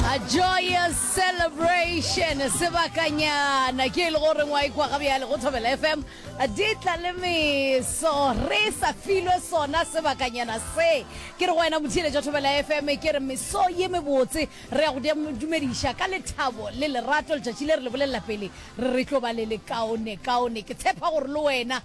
A joyous celebration sebakanyana ke e le gore ngwa ikwa ga bjale go thobela fm di tla le meso re sa filwe sona sebakanyana se ke re go wena motheeletša thobela fm ke re meso ye mebotse re ya go dem- dumediša ka lethabo le lerato letšatši le re le bolelela pele re re tlo ba le lekaone kaone ke tshepa gore le wena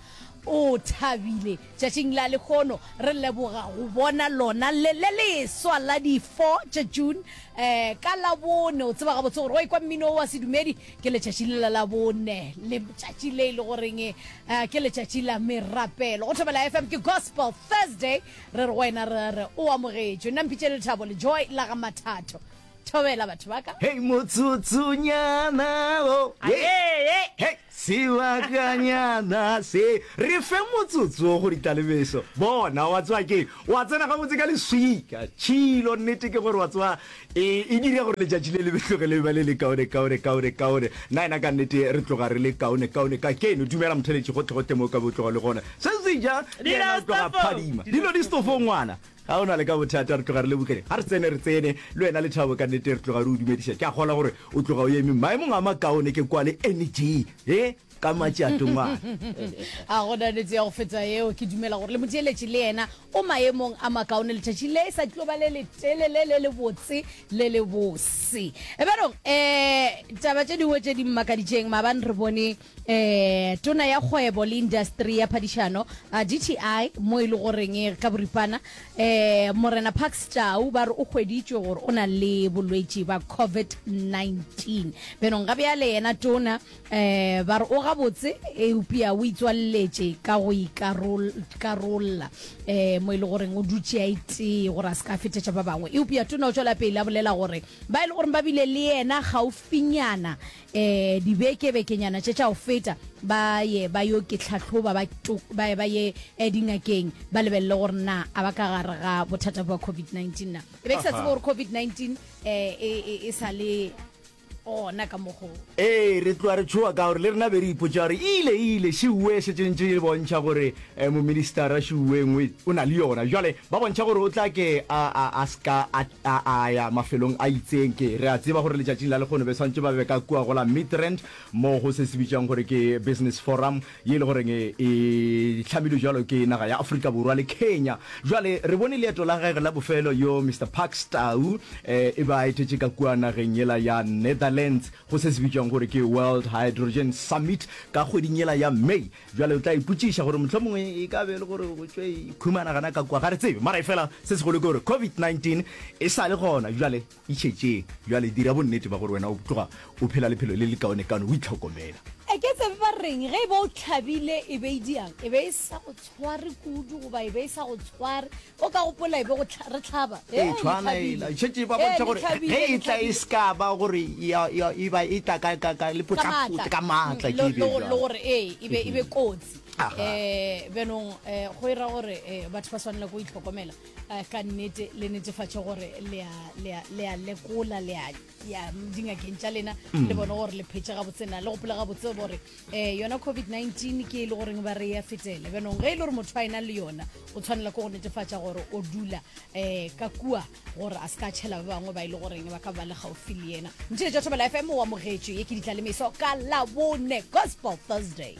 o thabile Tšatšing la lehono re leboga go bona lona le le leswa la di 4 tša June um ka Labone. O tseba gabotse gore wa ikwa mmino wa sedumedi ke letšatši le la Labone, letšatši le e le goreng um ke letšatši la merapelo. Go Thobela FM ke Gospel Thursday, re re go wena re re o amogetšwe. Nna Mpitše Lethabo, Lejoy la ga Mathato. Thobela batho ba ka. Hei motsotsonyana o hei sebakanyana se re fe motsotso o go ditalebeso bona wa tswa ke wa tsena gabotse ka leswika tšhilo nnete ke gore wa tswa e, e dire gore letšatši le lebetloge le ba le le kaone kaone kaone kaone nna ena ka nnete re tloga re le kaone kaone ka keno dumela motheletši gotlhegotlhe mo ka botlogo le gona se se ja phadima dilo di stofo ngwana Ga o na le ka bothata, re tloga re lebogile. Ga re tsene, re tsene. Le wena, Lethabo, ka nnete re tloga re o dumediša. Ke a kgolwa gore o tloga o eme maemong a makaone ke kwa le Energy, he, ka matšato ngwana. Ga go na nnete ya go feta yeo. Ke dumela gore le motšeletši le yena o maemong a makaone. Letšatši le sa tlo ba le letelele, le lebotse, le lebose. Ebarong, ee, taba tše dingwe tše di mmakaditšeng, maabane re bone. Tona ya Kgwebo le Indasteri ya Phadišano, dti, mo e le goreng ka boripana Morena Parks Tau ba re o hweditšwe gore o na le bolwetši ba COVID-19. Bjnong ga bjale yena Tona ba re o gabotse eupja o itswaleletše ka go ikarolla mo e le goreng o dutše a itee gore a se ka fetetša ba bangwe. Eupja Tona o tšwelapele a bolela gore ba e le goreng ba bile le yena gaufinyana eh, dibekebekenyana tše tša go feta ba ye ba yo ke tlhatlhoba ba to- ba ye ba ye eh, dingakeng ba lebelele gore na a ba ka gare ga bothata bja covid-19 na e be ke sa tsebe gore covid-19 um e sa le gona ka mogo ee re tloa re tshoa ka gore le rena be re ipotsa gore e ile e ile šiue setsentse e bontšha gore um moministara šiue ngwe o na le yona jale ba bontšha gore o tla ke a, a, a ska a A a ya mafelong a itseng. Ke, re a tseba gore letšatšing la lekgono be swantše ba be ka kua go la Midrand, moo go se se bitšwang gore ke Business Forum, ye e le goreng e, e hlamilwe bjalo ke naga ya Afrika Borwa le Kenya. Bjale, re bone leeto la gagwe la bofelo, yo Mister Parks Tau, e, e be a etetše ka kua nageng yela ya Netherlands, go se se bitšwang gore ke World Hydrogen Summit, ka kgweding yela ya May. Bjale o tla ipotšiša gore mohlomongwe e ka be e le gore go tšwe ikhumana gana ka kua, ga re tsebe. Mara efela se segolo ke gore COVID-19 e sa le gona, bjale e šetše. Bjale dira bonnete bja gore wena o tloga o phela lephelo le lekaonekaone, o itlhokomela. A ke tsebe ba reng ge e ba o hlabile, e be e diang? E be e sa go tshware kudu goba e be e sa go tshware? o ka gopola e be go tlha- re tlhaba e Ee, tshwana e ela šetše ba bontšha gore ge e tla e se ka ba gore ya- ya- e ba e tla ka- ka- ka le potlapotle ka maatla ke ebe jwalo. le gore ee e be e be kotsi Aha. um bjanong um go e ra gore um batho ba swanela ko itlhokomela um ka nnete le netefatše gore le a- le a le a lekola le a ya dingakeng tša lena mm. le bone gore le phetse gabotsena le gopola gabotse gore um eh, yona covid-19 ke e le goreng ba re ya fetele benong ge e le gore motho a e nang le yona o tshwanela ke go netefatša gore o dula um ka kua gore a se ka tšhela ba bangwe ba e le goreng ba ka ba le gaufi le yena ntšhile tša thobela fm wa mogetšo ye ke ditla le meso ka labone gospel thursday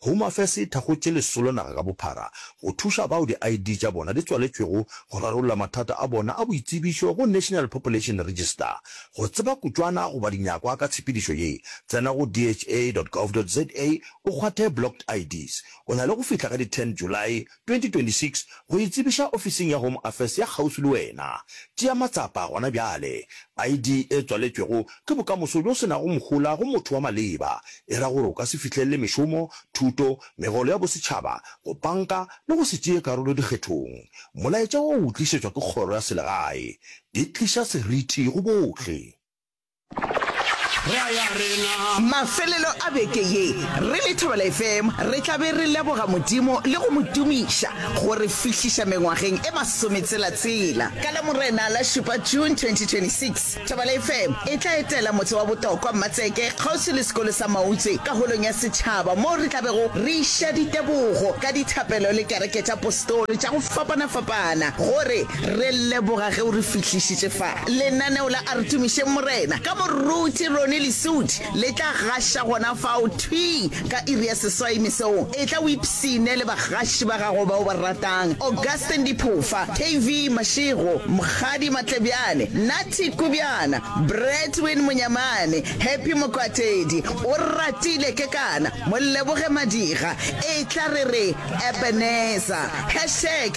Home Affairs e thakgotše lesolo naga ka bophara go thuša bao di-ID tša bona di tswaletšwego go rarolla mathata a bona a boitsebišo go National Population Register. Go tseba kutšwana goba dinyakwa ka tshepedišo ye, tsena go dha dot gov dot za o kgwathe Blocked IDs. O na le go fihla ka di 10 Julae 2026 go e tsebiša ofising ya Home Affairs ya kgauswi le wena. Tšea matsapa gona bjale. ID e tswaletšwego ke bokamoso bjo se nago mohola go motho wa maleba, e ra gore o ka se fihlelele mešomo, thuto, megolo ya bosetšhaba, go panka le go se tšee karolo dikgethong. Molaetša wo o tlišetšwa ke kgoro ya selegae. E tliša seriti go bohle. Mafelelo a beke ye, re le Thobela FM re tla be re leboga Modimo le go mo tumiša go re fihliša mengwageng e masometselatsela. Ka Lamorena la šupa, June 2026, Thobela FM e tla etela motse wa Botokwa, Mmatseke, kgauswi le sekolo sa Mautswe ka Holong ya Setšhaba moo re tla bego re iša ditebogo ka dithapelo le kereke tša postoli tša go fapana-fapana gore Re leboga ge o re fihlišitše fa. Lenaneo la Artumišeng Morena ka Moruti Ronnie Lesudi le tla gaša gona fao thwi ka iri ya seswai mesong. Etla o ipshine le bagaši ba gago ba o ba ratang, Augustine Diphofa, KV Mashego, Mokgadi Matlebjane, Natty Kubjana, Bradwin Monyamane, Happy Mokwatedi, Oratile Kekana, Moleboge Madiga, Etla re re Ebenezer. Hashtag